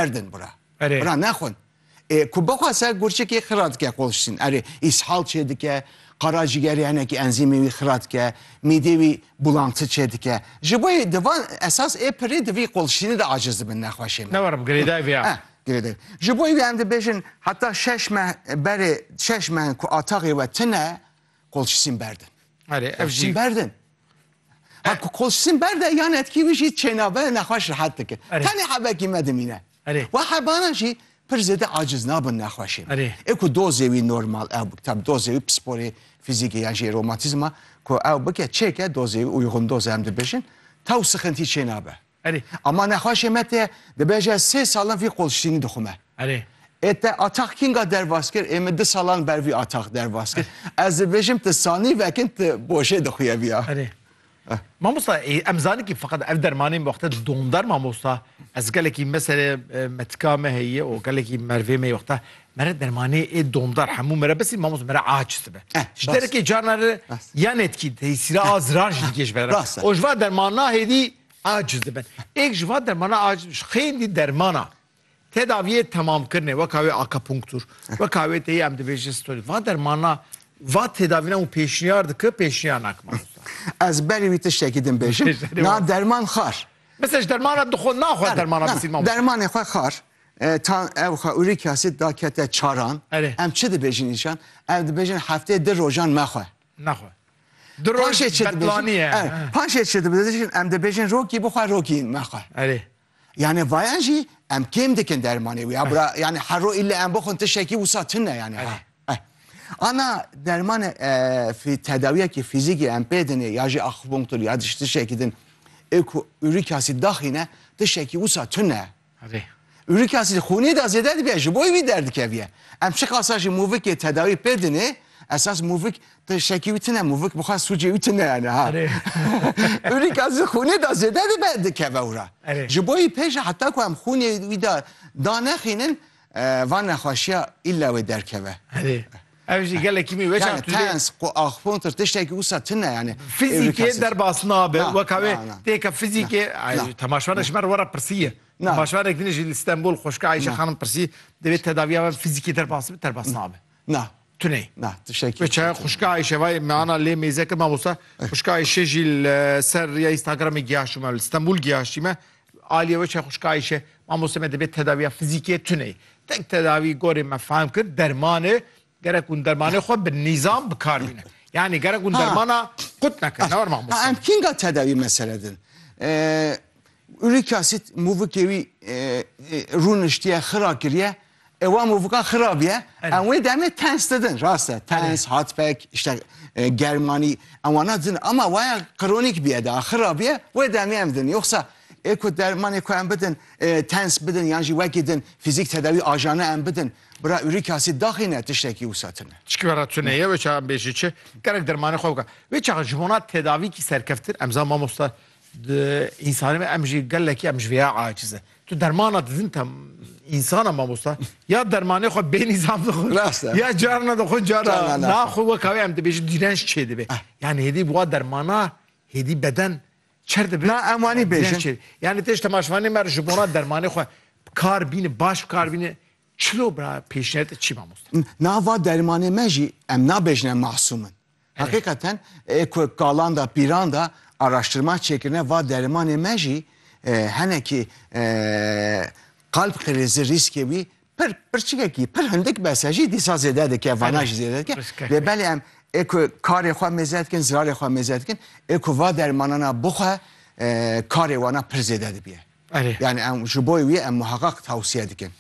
erdin bura. Erê. Bura nexwin. Ê ku bixwase gurçikê xira dike qolştin. Erê îshal çêdike, qaracigerê henekî enzîmê wî xira dike, mîdê wî bulantî çêdike. Ji bo yê di van esas ê pirê di vî qolştinê de aciz dibin nexweşê me. Ne were bi girêdayî vê ya. Girêdayî. Ji bo wî em dibêjin heta şeş meh berê şeş meh ku ataxê we tune qolştin berdin. Erê ev jî. Qolştin berdin. Hak koşsin berde yan etkî wî jî çênabe nexweş rehet dike. Tenê hebekî me dimîne. We hebanan jî pir zêde aciz nabin nexweşê. Ê ku dozê wî normal ew tab dozê wî pisporê fîzîkê yan jî romatîzma ku ew bike çêke dozê wî uyxundoz em dibêjin taw sixintî çênabe. Erê, ama nexweşê me tê, dibêje sê salan vî qolştînî dixwe me. Erê. Ê te Atax kînga derbas kir? Ê min du salan ber vî Atax derbas kir. Ez dibêjim tu sanî vekin tu bojê dixwîye vîya. Erê. Mamosta ê em zanî kî feqet ev dermanê min wexte domdar mamosta. Ez gelekî me serê metika me heye û gelekî mervê me yê wexte mere dermanê ê domdar hemû mere besî mamosta mere aciz dibe. Ji derekê carna re ya netkî têsîra a zirar jî dikê ji me re. O ji va dermana hêdî Aciz dibin. Êk ji van dermana aciz bin. Ji xêndî dermana tedaviyê temamkirinê weka wê akapunktur, weka wê tê yê em dibêjin sitolî. Van dermana va tedavîna hûn pêşniyar diki, pêşniyar naki mamosta. Ez berî wî tiştekî din bêjim. Na derman xar. Mesela ji dermana dixwe naxwe dermana bisîn mamosta. Dermanê xwe xar. Tan ew xwe uric asid da kete çaran. Em çi dibêjin îşan? Ew dibêjin heftê di rojan mexwe. Nexwe. Di roj Betlanî ye. Paşê çi dibêjin? Em dibêjin rokî bixwe rokî mexwe. Erê. Yanî vayan jî em kêm dikin dermanê wî. Ya bira yanî hero îlle em bixwin tiştekî wisa tune yanî. Erê. Ana dermanê tedawiyekî fîzîkî em pê dinê ya jî akupunktur ya jî tiştekî din ê ku urîk asid daxîne tiştekî wisa tune. Urik asîd xûnê de zêde dibe, ji bo wî derdikeviye. Em çiqasa jî mûvikê tedawî pê dinê, esas mûvik tiştekî wî tune, mûvik bi xwe sûcê wî tune yani ha. Urik asîd xûnê de zêde dibe dikeve û re. Ji bo wî pê jî heta ku em xûnê wî de danexînin, Van nexweşiya îlla wê derkeve. Erê. Ev jî gelekî mî weca Yani tuzê. tens, ku axupontir tiştekî wisa tune yani. Fizîkê derbas nabe Na, weka wê na, na. têka fizîkê Na, na. temaşvanê ji me re were pirsiye. Na. Temaşvanê din ji li Stenbol xweşika Ayşe Na. xanim pirsî divê tedaviya me fizîkê derbas bibe derbas nabe. Na. Tunê. Na, tişekî. Bi çaya xuşka Ayşe vay me ana lê mêze kir mamosta. Xuşka Ayşe jî li ser rêya Instagramê giyaşî me li Stenbul giyaşî me. Aliye we çaya xuşka Ayşe mamosta me dibê tedaviya fizîkê tunê. Tek tedavî gorê me fehm kir dermanê gerek hûn dermanê xwe bi nîzam bi kar bîne. Yani gerek hûn dermana qut nekin. Ne war mamosta. Em kînga tedavî mesele din. Uric acid mûvikê wî rûniştiye xira kiriye. E wa movika xirab ye. Em wê demê tens didin. Rast e. Tens, hatpek, işte germanî em wana didin. Ama waya kronîk biye de xirab ye wê demê em didin. Yoxsa ê ku dermanê ku em bidin e, tens bidin yan jî wekî din fîzîk tedawî ajana em bidin. Bira ûrik asîd daxî ne tiştekî wisa tune. Çikara tune ye wê çaxan bêjî çi. Gerek dermanê xwe bika. Wê çaxa ji bona tedavîkî serkeftin em zan mamosta Di însanê me em jî gelekî em ji vêya aciz e. Tu dermana didin te insana mamosta ya dermanê xwe bê nîzam dixwe ya carna dixwe cara naxwe weka wê em dibêjin dîrenç çê dibê yani hêdî bi wa dermana hêdî beden çer dibê na em wanî bêjin yani têj temaşvanê me ji bona dermanê xwe kar bîne baş kar bîne çilo bira pêşniyete çî mamosta nava dermanê me jî em nabêjin em masûmin Heqîqeten ê ku kalan de pîran de araştirma çêkirine va derimanê me jî henekî qalb qirêzi rîskê wî pir pirçikekî pir hindik bes e jî dîsa zêde dike vana jî zêde dike lê belê em ê ku karê xwe mêze dikin zirarê xwe mêze dikin ê ku va dermanana bixwe karê wana pir zêde dibiye. Erê. Yani em ji bo wî em muheqeq tewsiye dikin.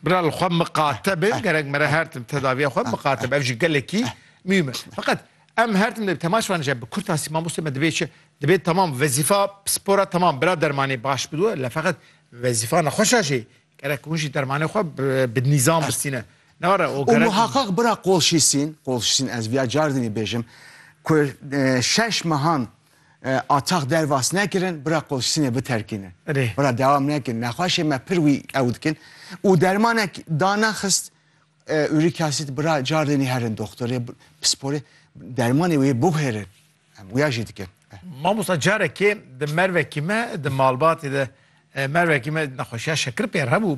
Bira li xwe miqate bin, gerek mere her tim tedaviya xwe miqate bin. Ev jî gelekî mûhim e. Feqet em her tim dê temaş van ji bi kurt asî mamostê me divê çi? Divê tamam wezîfa psipora tamam bira dermanê baş bidiwe le feqet wezîfa nexweşa jî gerek hûn jî dermanê xwe bi nîzam bistîne. Ne were o gerek. Û muheqeq bira qolşîsîn, qolşîsîn ez viya car dinî bêjim ku şeş mehan Atax dervas nekirin bira qolştinê biterkîne. Bira dewam nekin. Nexweşê me pir wî ew dikin. Û dermanek da nexist ûrik asit bira cardinî herin doktorê pisporê dermanê wê biguhêrin. Em wîya jî dikin. Mamosta carekê di mervekî me di malbatê de mervekî me nexweşiya şekir pêr hebû.